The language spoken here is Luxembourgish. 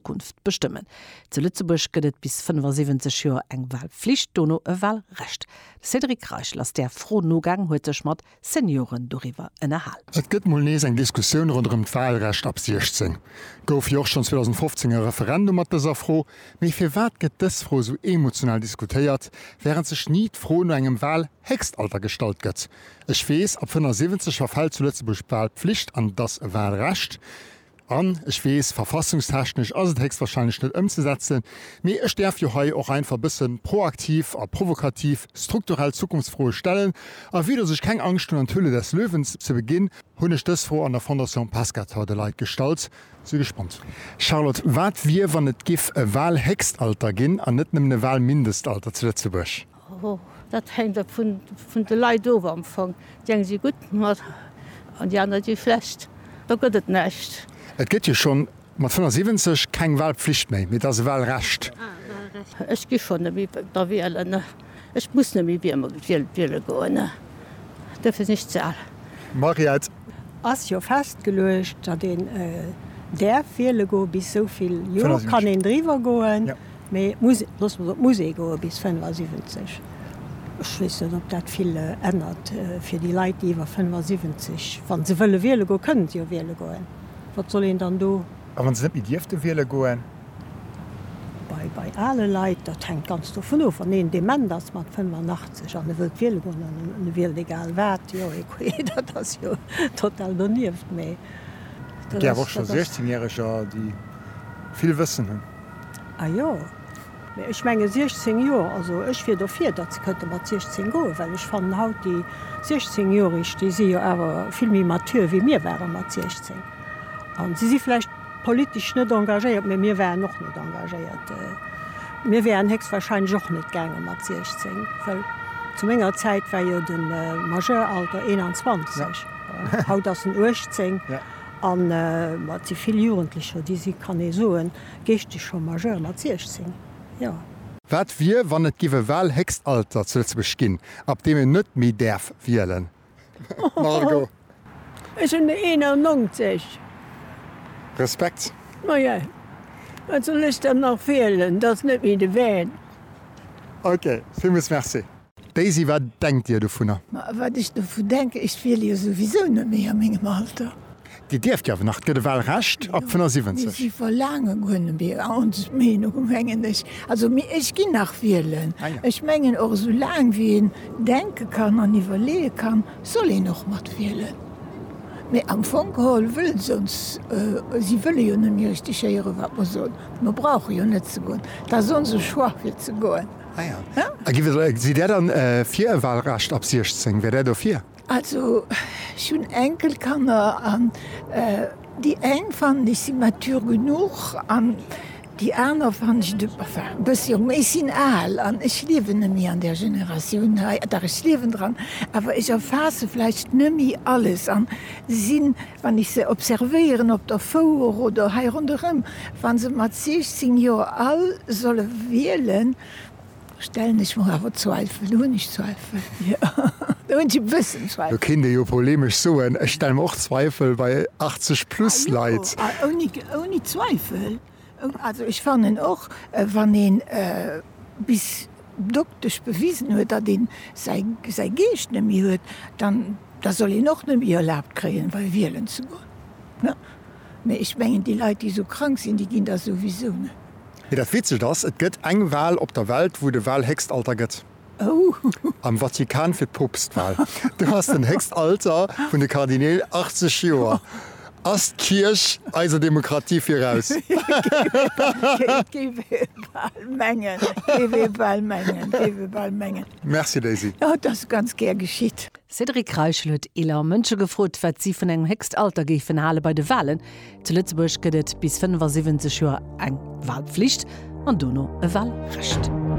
D'Zukunft bestëmmen. Zu Lëtzebuerg gëtt et bis 75 Joer eng Walpflicht, dono e Walrecht. De Cédric Reichel ass där Fro nogaang, huet sech mat Senioren doriwwer ënnerhal. Et gëtt mol nees eng Diskussioun ronderëm d'Walrecht ab 16. Gouf jo och schonn 2015 e Referendum mat dëser Fro. Mee firwat gëtt dës Fro esou emotional diskutéiert, wärend sech ni d'Fro no engem Walhéchstalter gestallt gëtt? Ech weess, ab 75 verfält zu Lëtzebuerg d'Walpflicht an et ass e Walrecht. An, ech weess, verfassungstechnesch ass et héchstwahrscheinlech net ëmzesetzen, mee ech däerf jo hei och einfach e bësse proaktiv a provokativ strukturell Zukunftsfroe stellen. A vue dass ech keng Angscht hunn an d'Höhle des Löwen ze beginn, hunn ech dës Fro an der Fondation Pescator de Leit gestallt. Si gespannt. Charlotte, wat wier, wann et giff e Wahlhéchstalter ginn an net nëmmen e Wahlmindestalter zu Lëtzebuerg? Dat hänkt ab vun de Leit of am Fong. Déi eng si gutt mat an déi aner déi schlecht. Do gëtt et näischt. Et gëtt jo schonn mat 75 keng Walpflicht méi, mee et ass e Walrecht. Ech gi schonn net méi da wielen. Ech muss net méi wiele goen. Duerfir sinn ech ze al. Mariette. Ass jo festgeluecht, datt een däerf wiele goen. Bis esou vill Joer kann een driwwer goen. Mee d'Musek, loosse mer se op Musée goe bis 75. Ech weess net, ob dat vill ännert fir déi Leit, déi iwwer 75, wa se wëlle wiele goen, kënne se jo wiele goen, wat soll een dann do. A wa se net méi dierfte wiele goen? Bei ale Leit, dat hänkt ganz dovun of, wann een dement ass mat 85 an e wëllt wiele goen an e wielt egal wat, jo, écoute, dat ass jo total donieft. Mee dat ass. Et ginn awer och scho 16 Järeger, déi vill Wëssen hunn. A jo, mee ech menge 16 Joer, also ech wier dofir, datt se kënnte mat 16 goen, well ech fannen haut déi 16 Joerig, déi si jo awer vill méi mature wéi mir ware mat 16. An si si vläicht politesch net engagéiert, mee mir waren och net engagéiert. Mir wäeren héchstwahrscheinlech och net gaange mat 16, well zu menger Zäit war jo de Majeuralter 21, haut ass en 18. An et si vill Jugendlecher, déi si, kann ee soen, Géicht ech scho Majeur mat 16? Jo. Wat wier, wann et giff e Wahlhéchstalter zu Lëtzebuerg ginn, ab deem een net méi däerf wielen? Margot. Ech hunn der 91. Respekt. Maja, wat soll ech dann nach wielen? 't ass net méi de Van. Ok, villmools Merci. Daisy, Wat denkt Dir dovunner? Ma wat ech dovu denken, ech wiele jo souwisou net méi a mengem Alter. Dir dierft jo awer nach, et gëtt e Wahlrecht ab 75. Si verlaange guer net méi, ons Meenung mengen ech. Also mee ech ginn nach wielen. Ech mengen och esou laang wéi een denke kann an iwwerleeë kann, soll een och mat wielen. Mee am Fong geholl wëlle se ons, si wëlle jo net méi richteg héieren, wat mer soen. Mer brauche jo net ze goen. Et ass onse Choix fir ze goen. Sidd Där dann fir e Wahlrecht ab 16? Wär Där dofir? Also ech hunn Enkelkanner an déi eng fannen ech si mature genuch an déi aner fannen ech de, enfin e bësse jo méi. Ech sinn al an ech liewen nemmi an där Generatioun hei, dach ech liewen dran, awer ech erfaasse vläicht nemmi alles an sinn Wann ech se observéieren op der Fouer oder hei ronderëm, wa se mat 16 Joer all solle wielen, stellen ech mer awer Zweifel. Do hunn ech Zweifel, jo, do hunn ech e bëssen Zweifel. Do kéint ee jo polemesch soen, ech stelle mer och Zweifel bei 80-plus-Leit. Ouni Zweifel. Also ech fannen och, wann ee bis doktesch bewisen huet, datt ee säi Geescht net méi huet, dann da soll een och net méi erlaabt kréien, wei wielen ze goen. Mee ech mengen, déi Leit, déi esou krank sinn, déi ginn da souwisou net. Mee dat Witzegt ass, et gëtt eng Wal op der Welt, wou de Walhéchstalter gëtt. Am Vatikan fir d'Poopstwal, do ass den héchst Alter vun de Kardineel 80 Joer. Ass d'Kierch eiser Demokratie viraus? Merci Daisy. Cédric Reichel huet eeler Mënsche gefrot, wat si vun engem héchst Alter géifen hale bei de Walen. Zu Lëtzebuerg gëtt et bis 75 Joer eng Walpflicht an dono e Walrecht.